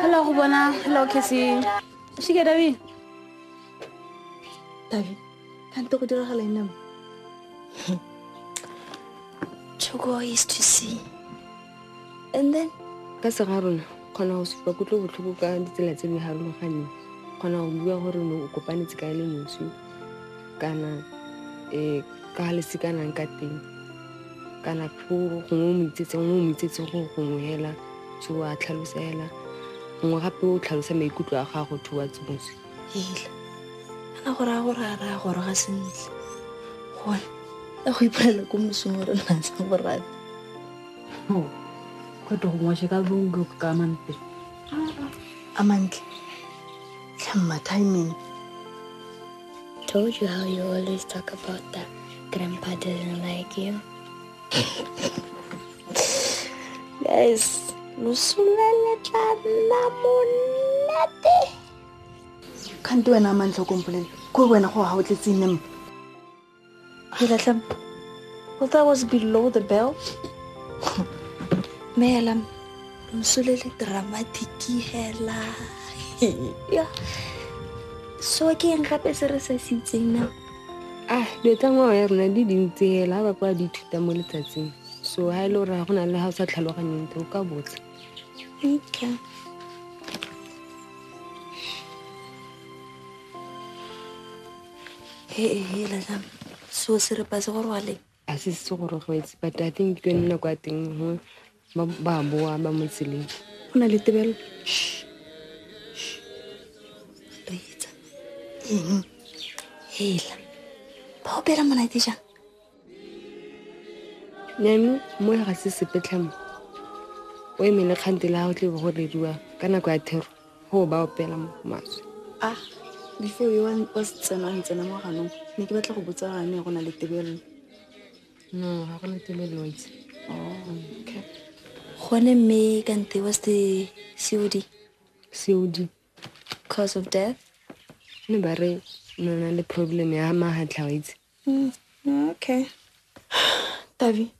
Hello, go bona. Hello, Cassie. Shike, Davi. Davi, kante go diragala ene mo? Chogo is to see. And then? Ka se ga rona, kgona go supa kutlo botlhoko ka ditsela tse di harologaneng. Kgona go bua gore ne o kopanetse ka ele moswi kana eh ka lesekanang ka teng. kana gongwe o mo itsetse gongwe o mo itsetse go gongwe hela so a tlhalosa hela gongwe gape o tlhalosa maikutlo a gago to wa tsimotse hela ana gore a gore a raya gore ga sentle gone ya go ipolela ko mosong re na sa borate kgweto gongwe se ka bongo ka mantle a mantle tlhamma timing Told you how you always talk about that grandpa doesn't like you. Guys, no sulela tla monate. Kante wena a mantlho kompolele. Ko wena go ha o tletse nempa. Hilalam, well, that was below the belt. Melam, nsulele dramatic hela. yeah. So ke eng gape se re se sitseng na? Ah, dilo tsa ngwao ya rona di dintse hela ba kwa di thuta mo letsatsing. So ha ile ra go na le ha o sa tlhaloganyeng te o ka botsa. Okay. so serepa se go rwale a se se go rogwetse but i think ke nna kwa teng gongwe ba boa ba mo tseleng go na le tebelo reetsa eng hela ba opela monate jang neno mo ga se sepetlhamo o e mele kgante la gago tle go rediwa ka nako ya thero go ba opela mo maswe a ah, before yo wa setsena a ntsena mo ganong ne ke batla go botsa gane go na le tebelelo no ga go na tebelelo itse okay gone mme kante wa se cod cod cause of death ne ba re nona le problem ya mahatlha wa itse Mm, okay. Tavi,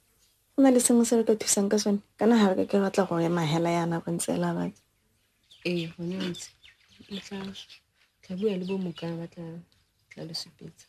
go na le sengwe se re ka thusang ka sone? Kana ga re ka ke batla go ema hela yana go ntse la batla. Ee, gone ntse. Tla bua le bo mokana ba tla tla le supetsa.